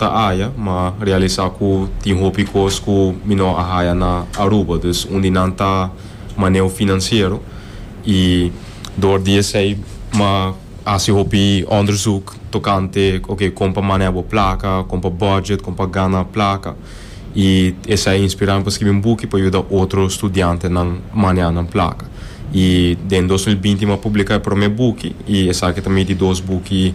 ta haya, ma realisa cu tin hopi cos cu mi no a haya na Aruba, dus un di nan ta maneo financiero y door di esey m'ha haci hopi onderzoek tocante ok con pa manea bo placa, con pa budget, con pa gana placa y esey a inspira mi pa scribi un buki pa yuda otro studiantenan manea nan placa y den dos mil binti m'ha publica e prome buki y esaki ta mi di dos buki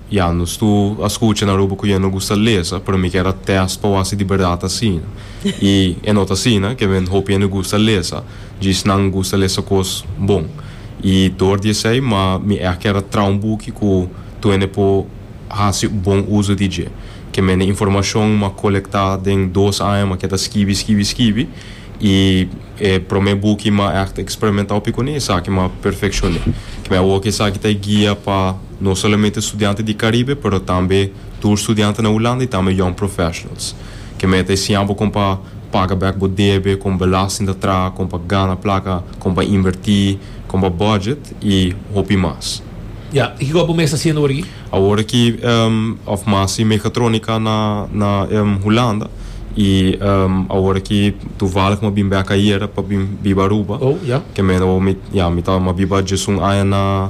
Ya, nos tur a scucha na Aruba cu yen no gusta lesa, pero mi kier a test pa wak si di berdad ta asina. Y e no ta asina, kiemen hopi hende gusta lesa, djis nan gusta lesa cos bon. Y door di esey, ma mi echt kier a traha un buki cu tur hende por haci bon uzo di dje. Kiemen e informacion m'ha colecta den dos aña m'ha keda skibi, skibi, skibi, y e prome buki m'ha echt experimentao pi cune esaki m'ha perfeccione. Kiemen awor cu esaki ta e guia pa. No solamente studiante di Caribe pero tambe tur studiante na Hulanda y tambe young professionals. Ke meta e siña bo kon pa paga bek bo debe, kon belasting ta traha, kon pa gana placa, kon pa inverti, kon pa budget y hopi mas. Ya, y kiko bo mester haciendo awor aki? Awor aki of mas si Mechatronica na na Hulanda y awor aki toevallig mi a bin bek ayera pa bin biba Aruba. Oh, ya. Ke mena awor mi, ya, mi ta mi a biba dje-sun aña na.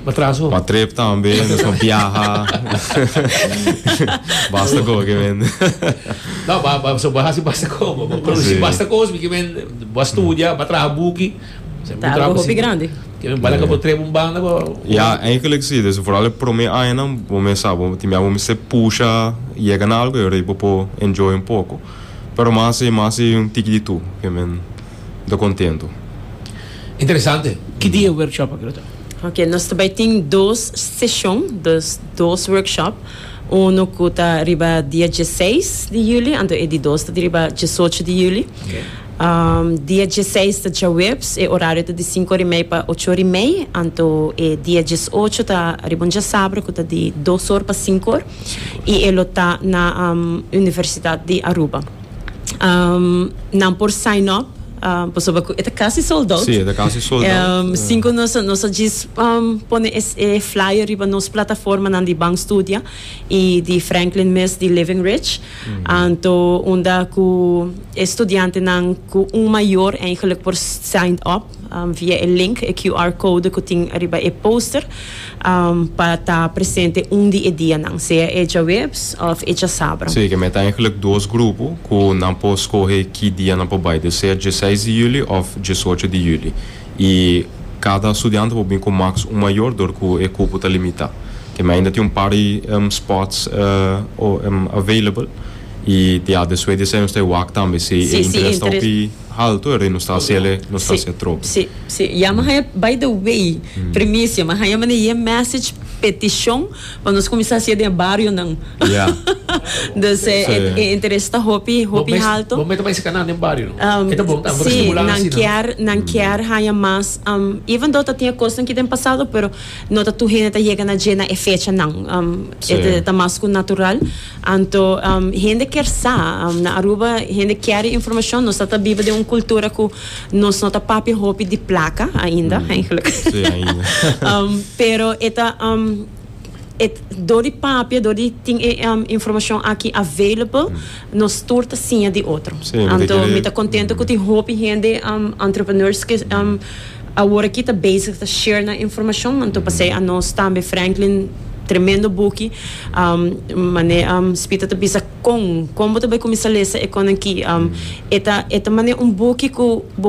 Pa trip tambe nos por biaha basta con bo ke mende. No bo bo hasi basta con bo bo produci basta cos mi ke mende bo a studia bo a traha buki bo a traha hopi grandi ke men bala ka bo trip un banda bo. Ya eindelijk si dus foral e prome añanan bo mes sa bo tin mia bo mester pusha yega na algo ayo rei bo por enjoy un poco pero mas si mas si un tiki di tur ke men. N ta kontentu. Interesante. Ki dia e workshop akí lo ta? Oke, nos ta bai tin dos seshon, dus dos workshop. Uno ku ta riba dia dieseis di yuli, anto e di dos ta di riba diesocho di yuli. Dia dieseis ta djaweps, e orario ta di sinku ora i mei pa ocho ora i mei, anto e dia diesocho ta riba un diasabra ku ta di dos or pa sinku or i e lo ta na Universitat di Aruba. Um, nan por sign up. Um, pasobra cu eta casi sold out. Sí, eta casi sold out. Um, yeah. Sin cu nos, nos a jis um, pone es, e flyer riba nos plataforma nan di Bank Studia y di Franklin mes di Living Rich. Mm -hmm. Anto, unda cu estudiante nan cu un mayor eigenlijk por sign up um, via e link, e QR code cu tin riba e poster. pa ta presente un di e dianan, sea e djaweps òf e djasabra. Sí, ke mei ta eigenlijk dos grupo ku nan por skohe ki dia nan por bai, di sea dieseis di juli òf diesocho di juli. I kada studiante por bin ku maks un mayor dor ku e kupo ta limitá. Ke mei ainda tin un par di spòts available i di a despues di esei nos ta e wak tambe si e interes ta hopi. Haltu e rei nos ta haci ele nos ta haci e trobo. Si, si, si. Ya mi haña, by the way, primicia, mi haña manera e message peticion pa nos cuminsa haci den e barionan. Ya. Dus e, e, e interes ta hopi, Bo hopi mes, haltu. bo mester bai si kanan den bario no. E ta bon tambe pa Sí, stimula nan asina. kier, nan kier haña mas, even though ta tin e cosnan ki den pasado, pero no ta tur hende ta yega na dje na e fechanan. E ta, ta mas cu natural. Anto hende kier sa. Na Aruba hende kier e informacion. Nos ta ta biba den un cultura cu nos no ta papia hopi di placa ainda, eigenlijk. Pero e ta door di papia, door di tin e informacion aki available, nos tur ta siña di otro. Anto mi ta contento cu tin hopi hende, entrepreneurs, ki. Awor aki ta bezig ta share nan informashon man tur pasei anos tambe Franklin tremendo buki mane Spita ta bisa kon kon bo ta bai kuminsa lesa e konan ki e ta e ta mane un buki ku bo.